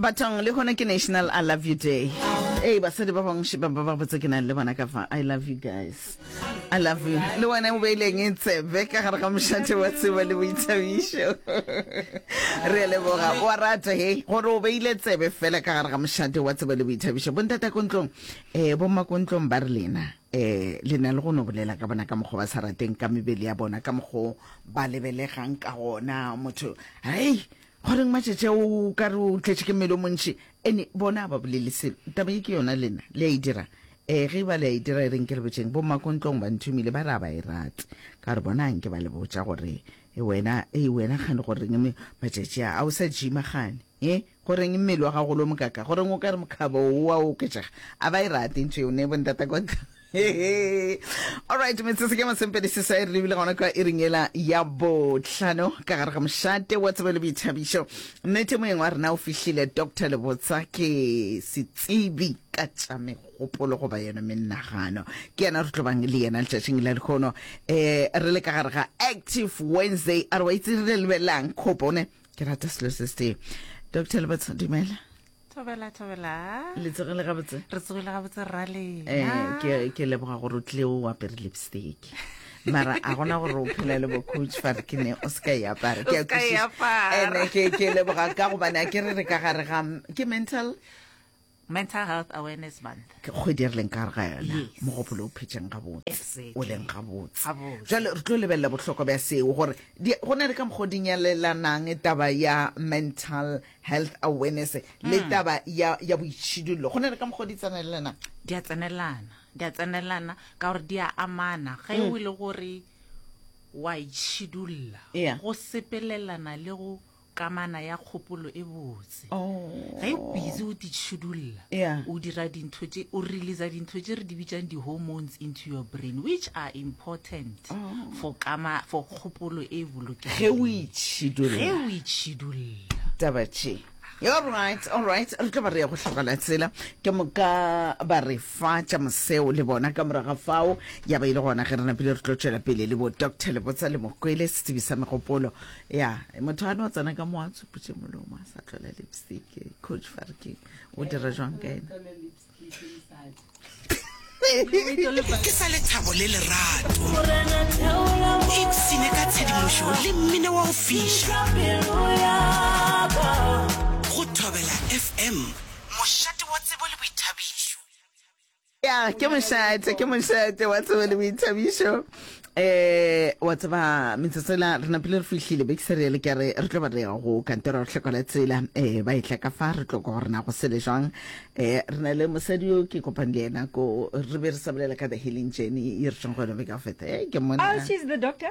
batong le gona ke national i love you day ee basadi ba bangwe ba ba botse ke nang le bona ka fa i love you guys i love you le wena o beileng e tsebe ka gare ga mošate wa tseba le boithabišo re leboga wa rata he gore o beile tsebe fela ka gare ga mošate wa tseba le boithabišo bontatakontlong um eh, bommakontlong ba re lena Eh, le na le go no bolela ka bona ka mokgwa ba sa rateng ka mebele ya bona ka mokgwa ba lebelegang ka gona motho hei goreng matšatši o ka re o tletše ke mmele o montši ene bona ba bolele selo taba e ke yona lena le a e dirang um ge e ba le a e dira e reng ke re botšeng bommakontlong ba nthomile ba re a ba e rate ka gore bona nke ba le botša gore e wena e wena gane goreng matšatši a o sa jima gane He, go reng mmele wa gago o lo mokaka? Go reng o ka re mokgabo o wa oketšega? A ba e rate ntho eo ne bo ntata kwa ntle. Alright, metsotso ke masempedi se sa e rebile gona kwa e reng ela ya botlhano ka gare ga mošate wa tsebo le boithabišo. Nnete moyeng wa rena o fihlile Dr. Lebotsa ke setsebi ka tša megopolo goba yona menagano. Ke yena re tlo bang le yena letšatšing la lekgono. Eh, re le ka gare ga Active Wednesday. A re wa itse re lebelelang khopone ke rata selo se se dr lebats dumela thobela thobela le tsogile gabotse re tsogile gabotse rale um eh, ke leboga gore o tlile o apere lipstick mara a gona gore o phela le bocoach fa ke ne o seka e apara ke leboga ka gobane a ke re re ka gare ga ke mental mental health awareness month ke kgwedi e re leng ka ga yona mogopolo o phetšeng gabotse o leng gabotse jale re tlo lebelela bohlokwa bja seo gore go na le ka mokgwa o dinyalelanang taba ya mental health awareness le hmm. taba ya boitšhidullo go na le ka mokgwa o di tsenelelanang di a tsenelelana di a tsenelelana ka gore di a amana ge hmm. o le gore wa itšhidulla go sepelelana le go Kamana ya kgopolo e botse. Ge o busy o titšhudulla, o dira dintho tše, o releasa dintho tše re di bitšang di-hormones into your brain which are important for kama, for kgopolo e bolokegileng ge o itšhidulla. Taba tše. Alright, alright, re tlo ba re ya go hlogela tsela. Ke moka ba re fa tša moseo le bona. Ka morago ga fao ya ba e le gona ge re napile re tlo tšwela pele le bo Doctor Lebotsa le Mokwele, setsebi sa megopolo ya motho a no tsena ka mo a tshuputše molomo a sa tlola lipstick coach farking o dira jwang ka ena ke sa lethabo le lerato ipsene ka tshedimošo le mmino wa go fiša go thobela fm mošate wa tsebo le boithabišo ya ke mošate ke mošate wa tsebe le boithabišo eh wa tseba metsotsela re napile re fihlile be ke se reele ke re re tlo ba re ya go kantoro re tlhokola tsela eh ba e tla ka fa re tlo ka gore na go sele jwang eh re na le mosadi yo ke kopang le yena ko re be re sa bolela ka the healing journey e re tšong go yone be ka feta eh ke mona oh she's the doctor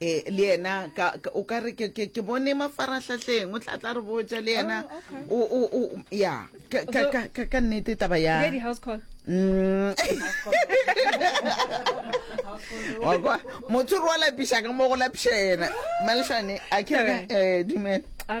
e le yena o ka re ke bone mafarahlahleng o tla tla re botsa le yena oh, ya ka nnete taba ya mm. motho re wa lapiša ka mo go lapiša yena malešane a ke eh, dumela ah,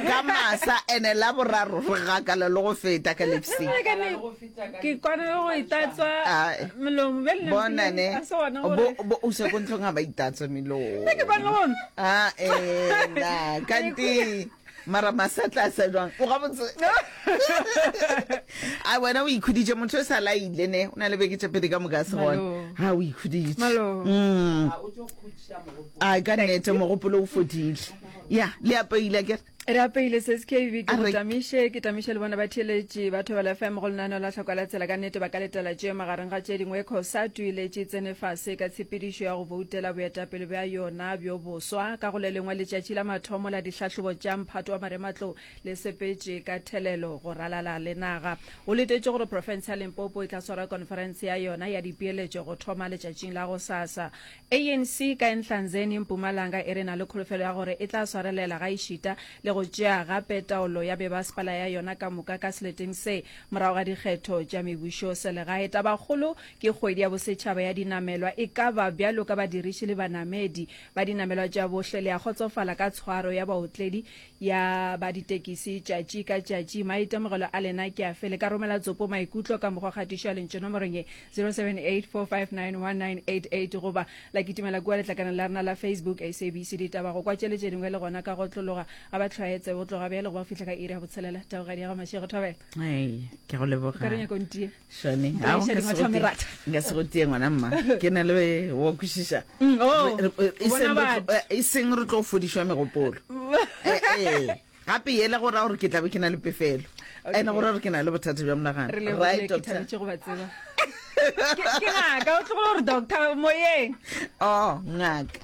ka masa ene la boraro re gakala le go feta ka lipstick ke kwana le go itatswa melomo bjale ne bona ne a se gona gore bo bo o se go ntlong ga ba itatswa melomo ke kwana le gona a ena kanti mara masatla a sa jwang o ga botse a wena o ikhuditše motho o sa laile ne o na le beke tše pedi ka moka se gona ha o ikhuditše mm. a ka nnete mogopolo o fodile ya le apeile ke re apeile se skv ke go tamiše ke tamiše le bona ba theletše ba thobela fm go lenaneo la tlhoko la tsela ka nnete ba ka letela tše magareng ga tše dingwe cosatu e letše tsene fase ka tshepedišo ya go boutela boetapele bja yona bjo boswa ka go le lengwe letšatši la mathomo la dihlahlobo tša mphato wa marematlou le sepetše ka thelelo go ralala le naga o letetše gore profense ya limpopo e tla swara conference ya yona ya dipeeletšo go thoma letšatšing la go sasa ANC ka Enhlanzeni, Mpumalanga e re e na le kholofelo ya gore e tla swarelela gaešita le go tšea gape taolo ya bebasepala ya yona ka moka ka seleteng se morago ga dikgetho tša mebušoselegae. Tabakgolo ke kgwedi ya bosetšhaba ya dinamelwa. E ka ba bjalo ka badiriši le banamedi ba dinamelwa tša bohle le a kgotsofala ka tshwaro ya baotledi ya ba ditekisi tšatši ka tšatši. Maitemogelo a lena ke afe? Le ka romela tsopo maikutlo ka mokgwa kgatišo ya lentšu nomorong ye 0784591988 goba la kitimela kua letlakaneng la rena la Facebook SABC Ditaba. Go kwa tše le tše dingwe le gona ka go otlologa ga ba tlhwaetse go tloga bjale go ba fihla ka iri ya botshelela. Teboga diega Mashego Thobela. Hey, ke go leboga. Ka re nyako ntie. Shane, Nka ha o Shane, nka se wa go thome tie- rata. nka se go tie ngwana mma ke na le wa kwešiša Mm, oh, Re- re- e bona seng re tlo- batho. eh, e seng re tlo fodišwa megopolo Eh, eh, gape yela go raya gore ke tlabe ke na le pefelo Okay. ene go raya gore ke na le bothata bja monagano re le Right, ke doctor? thabetše go ba tseba Ke- ke ngaka o tlogo gore doctor moyeng oh ngaka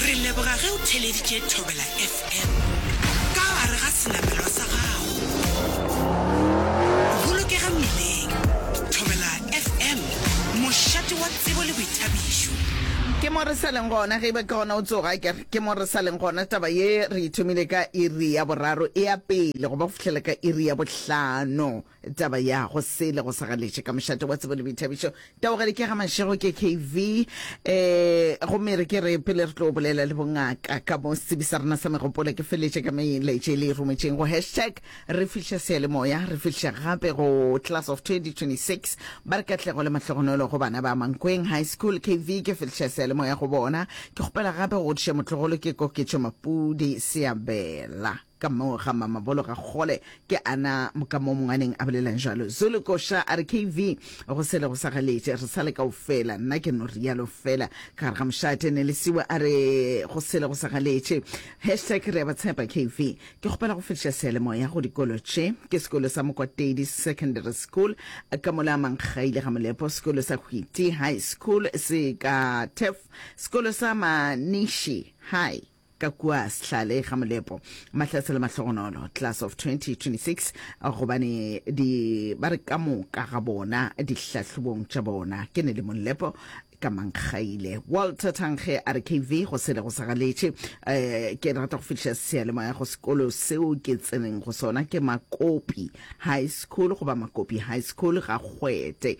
re leboga ge o theleditše thobela fm ka gare ga senamelwa sa gago bolokega mmileng thobela fm mošate wa tsebo le boithabišo ke mo re sa leng gona ge e ba ke gona o tsoga ke re ke mo re sa leng gona taba ye re e thomile ka iri ya boraro e ya pele go ba go fihlela ka iri ya bohlano Taba ya go sele go sa galetše ka mošate wa tsebo le boithabišo. Taogale ke ga Mašego ke KV. Eh, go mere ke re pele re tlo bolela le bongaka ka mo setsebi sa rena sa megopolo ke feletše ka melaetše le e rometšeng go hashtag re fihla seyalemoya re fihla gape go class of 2026 ba re katlego le mahlogonolo go bana ba Mankweng High School KV ke fihla seyalemoya go bona ke kgopela gape go godiša motlogolo ke koketšo Mapudi Seabela. Ka mo ga Mamabolo ga kgole ke ana ka mo mongwaneng a bolelang bjalo. Zulu koša a re KV go sele go sa galetše, re sa le kaofela. Nna ke no rialo fela. Ka gare ga mošate Nelisiwe a re go sele go sa galetše. Hashtag re a ba tshepa KV. Ke kgopela go fetiša seyalemoya go dikolo tše. Ke sekolo sa Mokwatedi Secondary School ka mo la Mankgaile ga Molepo, sekolo sa Hwiti High School se ka Turf, sekolo sa Manishi High, ka kua Sehlale ga Molepo, Mahlatse le Mahlogonolo, Class of 2026, gobane di ba re ka moka ga bona dihlahlobong tša bona ke ne le Molepo ka Mankgaile. Walter Thankge a re KV go sele go sa galetše, um ke rata go fetiša seyalemoya go sekolo seo ke tseneng go sona ke Makopi High School goba Makopi High School ga Kgwete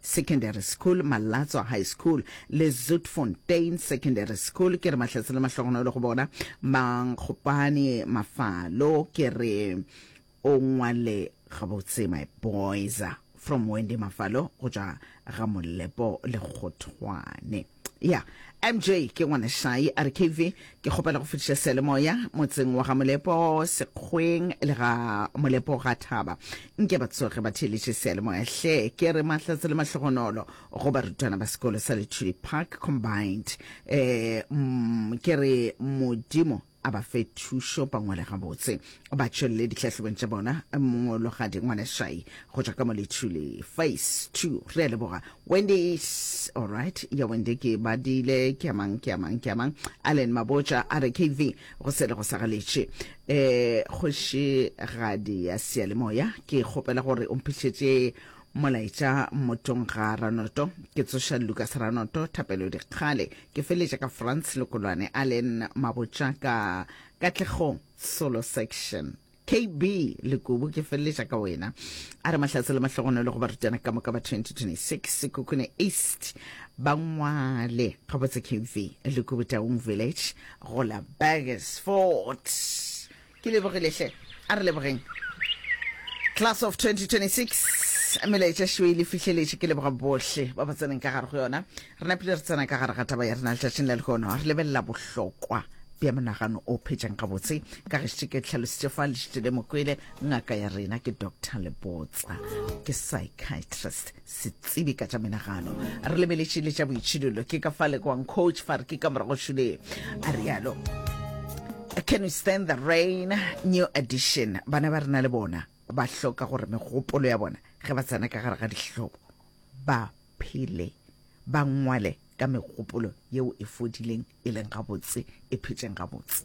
Secondary School, Malatso High School le Zoutfontein Secondary School. Ke re Mahlatse le Mahlogonolo go bona. Mankgopane Mafalo, ke re o ngwale gabotse my boys. From Wendy Mafalo go tšwa ga Molepo Lekgothwane. ya mj ke ngwanešai a re kv ke kgopela go fetiša seyalemoya motseng wa ga molepo sekgweng le ga molepo ga thaba nke ba tsoge ba theeletše seyalemoya hle ke re mahlatse le mahlogonolo go barutwana ba sekolo sa lethuli park combined um ke re modimo a ba fe thušo ba ngwale gabotse, ba tšwelele dihlahlobong tša bona. Mongologadi Ngwaneshai go tšwa ka mo Lithuli, Phase Two. Re a leboga. Wendy is alright. Ya Wendy ke badile, ke a mang, ke a mang, ke a mang. Allen Mabotja a re KV go sele go sagaletše. Eh, Kgošigadi ya Seyalemoya, ke kgopela gore o mphihletše Molaetša Mmotšong ga Ranoto, Ke tsoša Lucas Ranoto, Thapelo Dikgale, ke feletša ka Frans Lokolwane, Allen Mabotša ka Katlego Solo Section. KB Lekubu, ke feletša ka wena. A re Mahlatse le Mahlogonolo go barutwana ka moka ba 2026 Sekhukhune East ba ngwale gabotse. KV Lekubu Taung Village go la Burgersfort. Ke lebogile hle. A re lebogeng. Class of 2026, melaetša šeo e le fihleletše. Ke leboga bohle ba ba tseneng ka gare go yona. Re napile re tsena ka gare ga taba ya rena letšatšing la lehono. Re lebelela bohlokwa bja monagano o phetšang gabotse. Ka gešite ke tlhalositše fa lešite le mokwele, ngaka ya rena ke Doctor Lebotsa, ke psychiatrist. setsibi ka tša menagano re lebeletše le tša boitšhidolo ke ka fa lekwang coach fa re ke ka morago šule a rialo can we stand the rain new edition bana ba rena le bona ba hloka gore megopolo ya bona ge ba tsena ka gare ga dihlobo ba phele ba ngwale ka megopolo yeo e fodileng e leng gabotse e phetšeng gabotse